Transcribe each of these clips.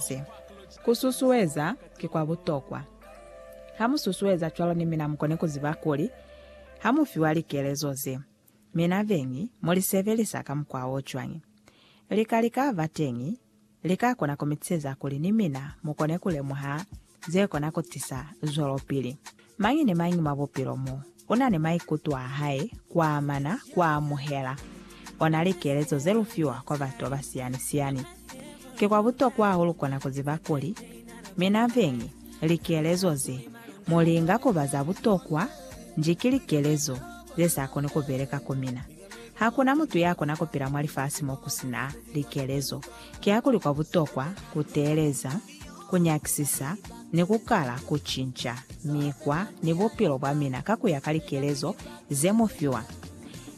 se. Ku susueza ki kwa butokwa. Ha mu susueza cwalo ni mina mukone ku ziba kuli ha mu fiwa likelezo ze, mina beñi mu li sebelisa ka mukwa o cwañi. Lika li ka ba teñi li ka kona ku mi tiseza kuli ni mina mu kone ku lemuha ze kona ku tisa zwelopili mañi ni mañi mwa bupilo mo u na ni maikuto a hae, ku amana, ku amuhela ona likelezo ze lu fiwa kwa batu ba siyani-siyani. Ki kwa butokwa hahulu kona ku ziba kuli, mina veñi, likelezo ze mu linga ku ba za butokwa nji ki likelezo ze sa koni ku beleka ku mina. Ha ku na mutu ya kona ku pila mwa lifasi mo ku si na likelezo. Kiakuli kwa butokwa ku teeleza. ku nyakisisa ni ku kala ku cinca mikwa ni bupilo bwa mina ka ku ya ka likelezo ze mu fiwa.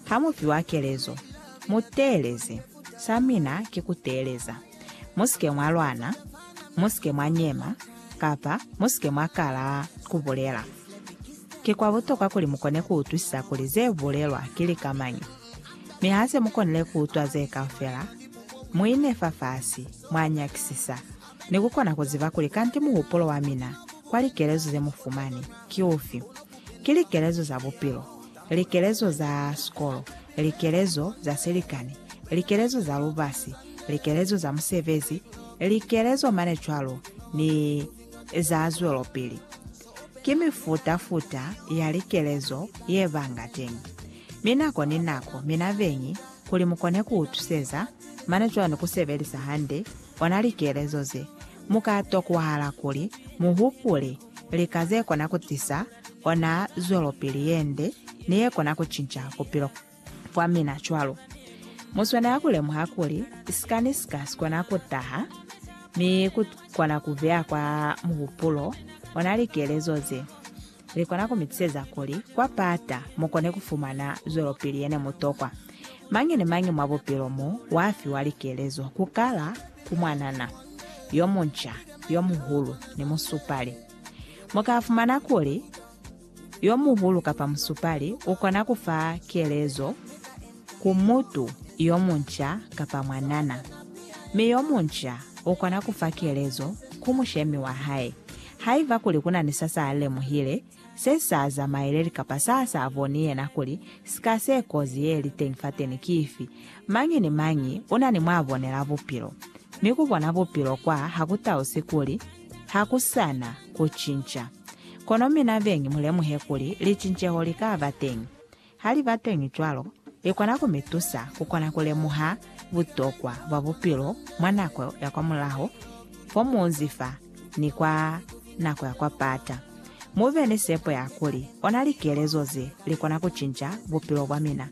Ha mu fiwa kelezo, mu teeleze. Sa mina ki ku teeleza. Mu si ke mwa lwana, mu si ke mwa nyema, kapa mu si ke mwa kala ku bulela. Ki kwa butokwa kuli mu kone ku utwisisa kuli ze bulelwa ki lika mañi. Mi ha se mu konile ku utwa ze kaufela, mu ine fafasi, mwa nyakisisa, ni ku kona ku ziba kuli kanti muhupulo wa mina kwa likelezo ze mu fumani ki ufi. Ki likelezo za bupilo, likelezo za sikolo, likelezo za silikani, likelezo za lubasi, likelezo za musebezi, likelezo mane cwalo, ni za zwelopili. Ki mifuta-futa ya likelezo ye ba nga teñi, mi nako ni nako mi na beñi kuli mu kone ku utuseza mane cwani ku sebelisa hande ona likelezo ze. Mu ka tokwahala kuli mu hupule lika ze kona ku tisa ona zwelopili ye nde ni ye kona ku cinca bupilo. Kwa mina cwalo, mu swanela ku lemuha kuli sikani si ka si kona ku taha, mi ku kona ku beya kwa muhupulo ona likelezo ze li kona ku mi tiseza kuli kwa pata mu kone ku fumana zwelopili ye ne mu tokwa. Mañi ni mañi mwa bupilo mo wa fiwa likelezo, ku kala ku mwanana yo munca, yo muhulu, ni musupali. Mu ka fumana kuli, yo muhulu kapa musupali u kona ku fa kelezo ku mutu yo munca kapa mwanana, mi yo munca u kona ku fa kelezo ku mushemi wa hae. Haiba kuli ku na ni sa s'a lemuhile, se s'a zamaeleli kapa sa s'a boni yena kuli sika se kozi ye li teñi fateni ki ifi, mañi ni mañi u na ni mw'a bonela bupilo. Mi ku bona bupilo kwa ha ku tausi kuli, Ha ku sa na ku cinca. Kono mina beñi mu lemuhe kuli licinceho li ka ba teñi. Ha li ba teñi cwalo, li kona ku mi tusa ku kona ku lemuha butokwa bwa bupilo mwa nako ya kwamulaho fo muunzi fa ni kwa nako ya kwa pata. Mu be ni sepo ya kuli ona likelezo ze li kona ku cinca bupilo bwa mina.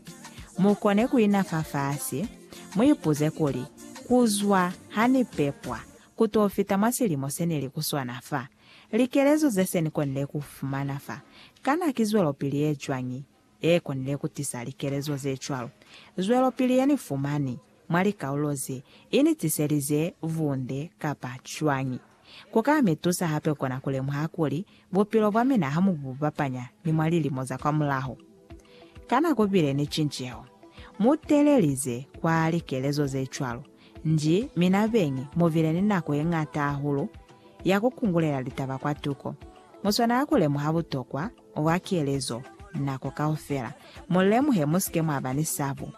Mu kone ku ina fafasi, mu ipuze kuli, Ku zwa ha ni pepwa, Ku t'o fita mwa silimo se ne li ku swana fa, likelezo ze se ni konile ku fumana fa kana ki zwelopili ye cwañi ye konile ku tisa likelezo ze cwalo? Zwelopili ye ni fumani mwa likaulo ze, i ni tiselize vunde kapa cwañi? Ku ka mi tusa hape kona ku lemuha kuli bupilo bwa mina ha mu bu bapanya ni mwa lilimo za kwamulaho. Kana ku bile ni cinceho? Mu telelize kwa likelezo ze cwalo. Nji, mi na beñi mu bile ni nako ye ñata hahulu ya ku kungulela litaba kwa tuko. Mu swanela ku lemuha butokwa bwa kelezo nako kaufela. Mu lemuhe, mu si ke mwa ba ni sabo.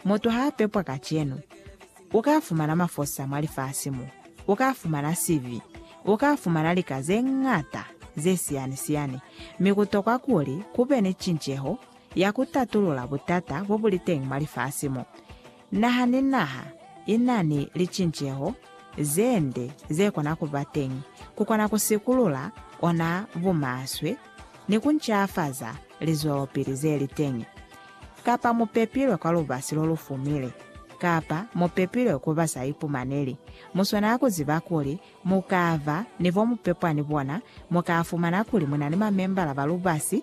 Mutu ha a pepwa kacenu, u ka fumana mafosa mwa lifasi mo. U ka fumana sibi. U ka fumana lika ze ñata ze siyani-siyani. Mi ku tokwa kuli ku be ni cinceho ya ku tatulula butata bo bu li teñi mwa lifasi mo. Naha ni naha i na ni licinceho ze nde ze kona ku ba teñi. Ku kona ku sikulula ona bumaswe ni ku ncafaza lizwelopili ze li teñi. Kapa mu pepilwe kwa lubasi lo lu fumile, kapa mu pepilwe ku ba sa ipumaneli, mu swanela ku ziba kuli mu ka ba ni bo mu pepwa ni bona, mu ka fumana kuli mu na ni mamembala ba lubasi,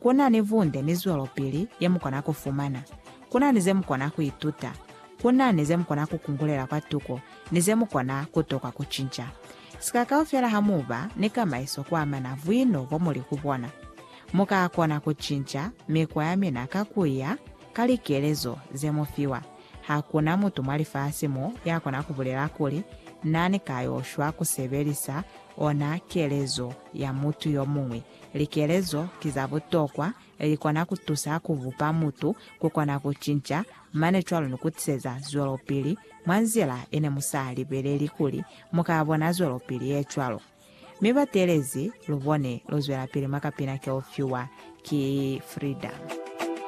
Ku na ni bunde ni zwelopili ye mu kona ku fumana. Ku na ni ze mu kona ku ituta. Ku na ni ze mu kona ku kungulela kwa tuko ni ze mu kona ku tokwa ku cinca. Sika kaufela ha mu ba ni kamaiso ku amana buino bo mu li ku bona. Mu ka kona ku cinca mikwa ya mina ka ku ya ka likelezo ze mu fiwa. Ha ku na mutu mwa lifasi mo ya kona ku bulela kuli na ni ka yo shwa ku sebelisa ona kelezo ya mutu yo muñwi Likelezo ki za butokwa, li kona ku tusa ku bupa mutu, ku kona ku cinca, mane cwalo ni ku tiseza zwelopili mwa nzila ye ne mu sa libeleli kuli mu ka bona zwelopili ye cwalo. Mi ba teelezi lu bone luzwelapili mwa kapina ke u fiwa ki Frida.